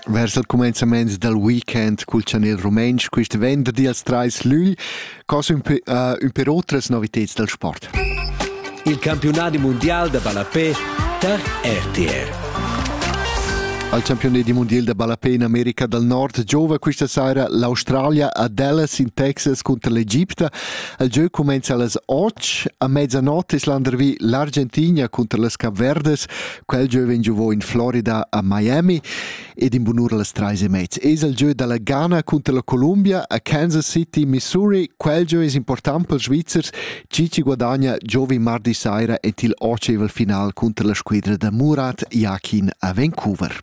Vers il cumenzament dal weekend cul chanel rumentsch quist venderdi als trais lügl cos ün pe, uh, ün per otras noviteds dal sport. Il campiunadi mundial da ballapè tar RTR. Al campiunadi mondial da ballapè in America dal Nord giova questa sera l'Australia a Dallas in Texas contro l'Egipta. Il gieu cumenza a las 8. A mezzanotte es landervi l'Argentina contro las Capverdes Quel gieu vegn giovò in Florida a Miami ed in bunura las trais e mez. Es il gieu dalla Ghana cunter la Columbia a Kansas City, Missouri. Quel gieu es important pels Svizzers, chi ci guadagna giovi mardi saira et il oceval final cunter la squadra da Murat Yakin a Vancouver.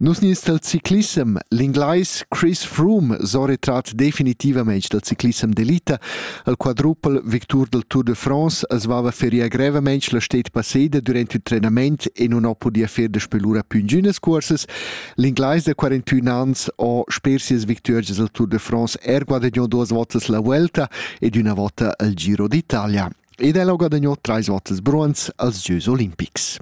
Nus nies dal ciclissem, l'inglais Chris Froome s'oretrat definitivamein dal ciclissem d'elita. El quadrupel victur del Tour de France els vava feria grevamein la stet passeda durant il trenament e non ho podia fer da spelura più ingünas cuorses. L'inglais da 41 ans ho sper sias victuors del Tour de France er guadagnou duas votas la Vuelta ed üna vota al Giro d'Italia. Ed el ho guadagnou trais votas bronz als Gieus olimpics.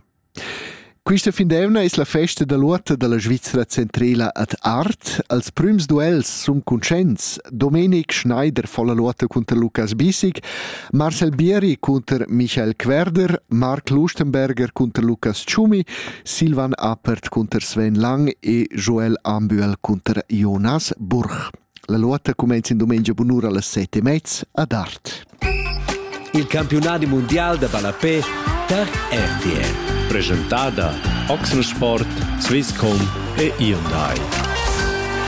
Quista findemna es la festa da l'uorta da la Svizra centrela ad Art. Als prüms duels sun cuntscients Domenic Schneider fo la luotta cunter Lukas Bissig, Marcel Bieri cunter Michael Querder, Marc Lustenberger cunter Lukas Tschumi, Silvan Appert cunter Sven Lang e Joel Ambuel cunter Jonas Burch. La lotta cumenza in dumengia bunura las set e mez ad Art. Il campiunadi mundial da ballapé per RTL. Presentada Oxensport, Swisscom e Hyundai.